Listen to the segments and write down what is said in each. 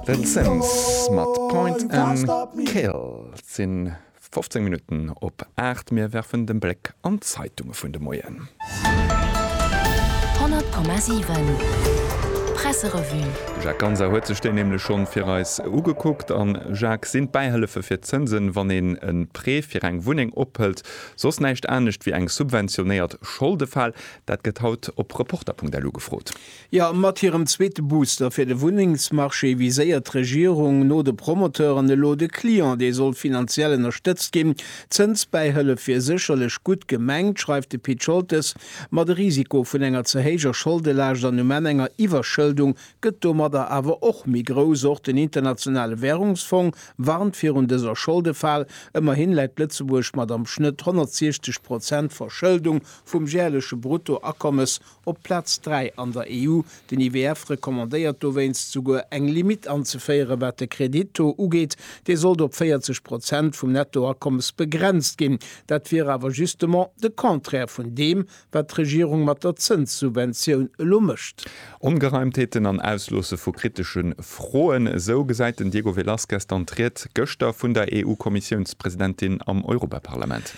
The Sims mat Point and Kill. Et si 15 Minutten op 8. Mir werfen de Bléck an d'Zeitunge vun de Moien. 100,7 Presserevue. De Jacques Ganser huet sech déi nämlech schonn fir eis ugekuckt. An, Jacques, sinn d'Bäihëllefe fir d'Zënsen, wann een e Prêt fir eng Wunneng ophëlt, soss näischt anescht wéi eng subventionéiert Scholdefal? Dat gëtt haut op Reporter.lu gefrot. Jo, mat hirem zweete Booster fir de Wunnengsmarché viséiert d'Regierung no de Promoteuren elo de Client, dee soll finanziell ënnerstëtzt ginn. D'Zënsbäihëllef wier sécherlech gutt gemengt, schreift de Pit Scholtes, ma de Risiko vun enger ze héijer Scholdelaascht an um Enn enger Iwwerschëldung gëtt domadder awer och méi grouss. Och den Internationale Wärungsfong warnt virun dëser Scholdefal. Ëmmerhin läit Lëtzebuerg mat am Schnëtt 160 Prozent Verschëldung vum järleche Bruttoakommes Op Plaz 3 an der EU. Den IWF recommandéiert dowéinst souguer eng Limitt anzeféieren, wat de Kredittaux ugeet. Dee sollt op 40 Prozent vum Nettoakommes begrenzt ginn. Dat wier awer justement de Contraire vun deem, wat d'Regierung mat der Zënssubventioun elo mécht. Ongereimtheeten an Ausloosse vu kritesche Froen, esou gesäit den Diego Velázquez dann d'Ried gëschter vun der EU-Kommissiounspresidentin am Europaparlament.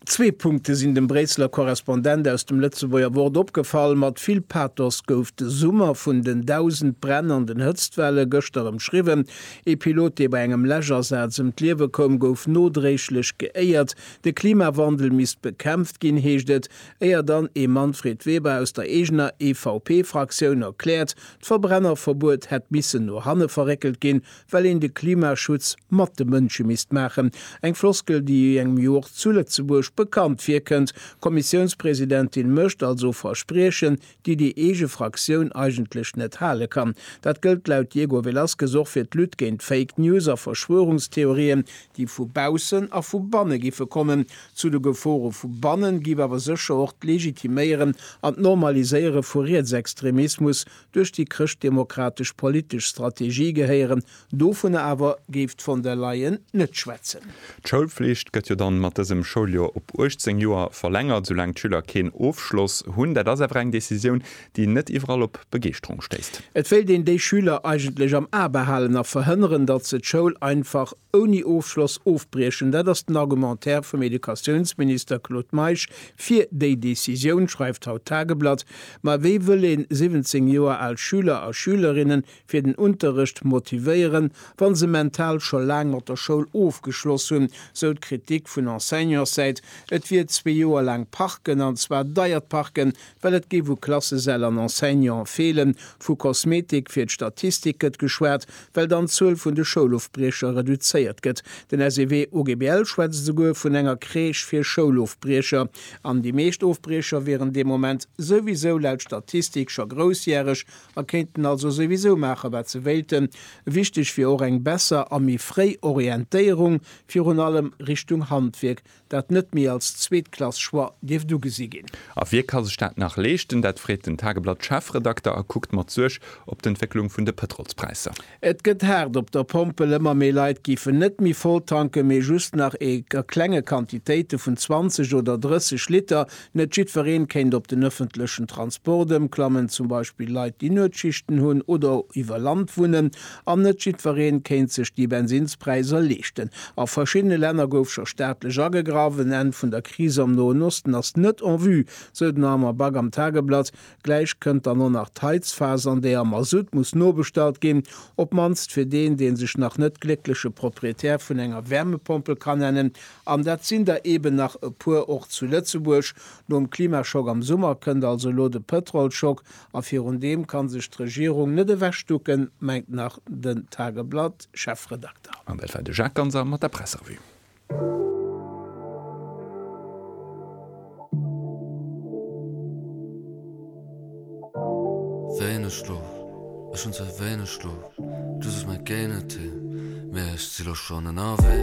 Zwee Punkte sinn dem Bréisseler Korrespondent aus dem Lëtzebuerger Wort opgefall, Mat vill Pathos gouf de Summer vun den dausend Bränn an den Hëtztwelle gëschter ëmschriwwen. Ee Pilot, dee bei engem Läschasaz ëm d'Liewe koum, gouf nodréiglech geéiert. De Klimawandel misst bekämpft ginn, heescht et, éier dann ee Manfred Weber aus der eegener EVP-Fraktioun erkläert, d'Verbrennerverbuet hätt missen no hanne verréckelt ginn, well een de Klimaschutz mat de Mënsche misst maachen, eng Floskel, déi engem jo och zu Lëtzebuerg bekannt virkënnt. D'Kommissiounspresidentin mécht also Verspriechen, déi déi eege Fraktioun eigentlech net hale kann. Dat gëllt laut Diego Velazquez och fir d'Lutte géint Fake News a Verschwörungstheorien, déi vu baussen a vu banne giffe kommen, zu de Gefore vu bannen giff awer sécher och d'Legitiméieren an d'Normaliséiere vu Rietsextremismus duerch déi chrëschtdemokratesch politesch Strategie gehéieren. Dovunner awer géif d'Von der Leyen net schwätzen. D'Schoulflicht gëtt jo dann mat dësem Schouljoer op 18 Joer verlängert, soulaang d'Schüler keen Ofschloss hunn. Dat ass awer eng Decisioun, déi net iwwerall op Begeeschterung stéisst. Et wéilt een déi Schüler eigentlech am A behalen a verhënneren, datt se d'Schoul einfach ouni Ofschloss ofbriechen, dat ass den Argumentaire vum Educatiounsminister Claude Meisch fir déi Decisioun, schreift haut d'Tageblatt. Ma wéi wëll een 17 Joer al Schüler a Schülerinne fir den Unterrecht motivéieren, wa se mental scho laang mat der Schoul ofgeschloss hunn, sou d'Kritik vun Enseignantssäit, et wier zwee Joer laang parken, an zwar deiert parken, Well et géif u Klassesäll an Enseignante feelen. Vu Kosmetik fir d'Statistik gëtt geschwat, well dann d'Zuel vun de Schoulofbriecher reduzéiert gëtt. Den SEW-OGBL schwätzt esouguer vun enger Crèche fir Schoulofbriecher. An déi meescht Ofbriecher wieren dee Moment souwisou laut Statistik scho groussjäreg a kéinten also souwisou maache wat se wéilten. Wichteg wier och eng besser a méi fréi Orientéierung, virun allem Richtung Handwierk, dat net méi als Zweetklass-Choix dierft ugesi ginn. A wie ka sech dat nach leeschten? Dat freet den Tageblatt-Chefredakter a kuckt mat Suerg op d'Entwécklung vun de Pëtrolspräisser. Et gëtt haart op der Pompel, ëmmer méi Leit géifen net méi voll tanken, mee just nach a klenge Quantitéite vun 20 oder 30 Liter, Net jiddwereen kéint op den ëffentlechen Transport ëmklammen, zum Beispill Leit, déi Nuetschichten hunn oder iwwer Land wunnen. An net jiddwereen kéint sech déi Bensinnspräiser leeschten. A verschiddene Länner gouf scho staatlech agegraff. En Enn vun der Kris am Noen Osten ass net en vue, sou den Armand Back am Tageblatt. Gläich kënnt dann och nach d'Heizphas, an där Masutt muss nobestallt ginn. Op mannst fir deen, dee sech nach net gléckleche Proprietär vun enger Wärmepompel kann nennen, An dat sinn der eeben nach e puer och zu Lëtzebuerg. Nom Klimaschock am Summer kënnt also elo de Pëtrolschock, a virun deem ka sech d'Regierung net ewechducken, mengt nach den Tageblatt-Chefredakter. An dat war de Jacques Ganser mat der Pressrevue. Wéineg Schlof, Ech hunn ze wéineg Schlof, just ass mäi Géinetee, mee ech si lo schonn ënnerwee.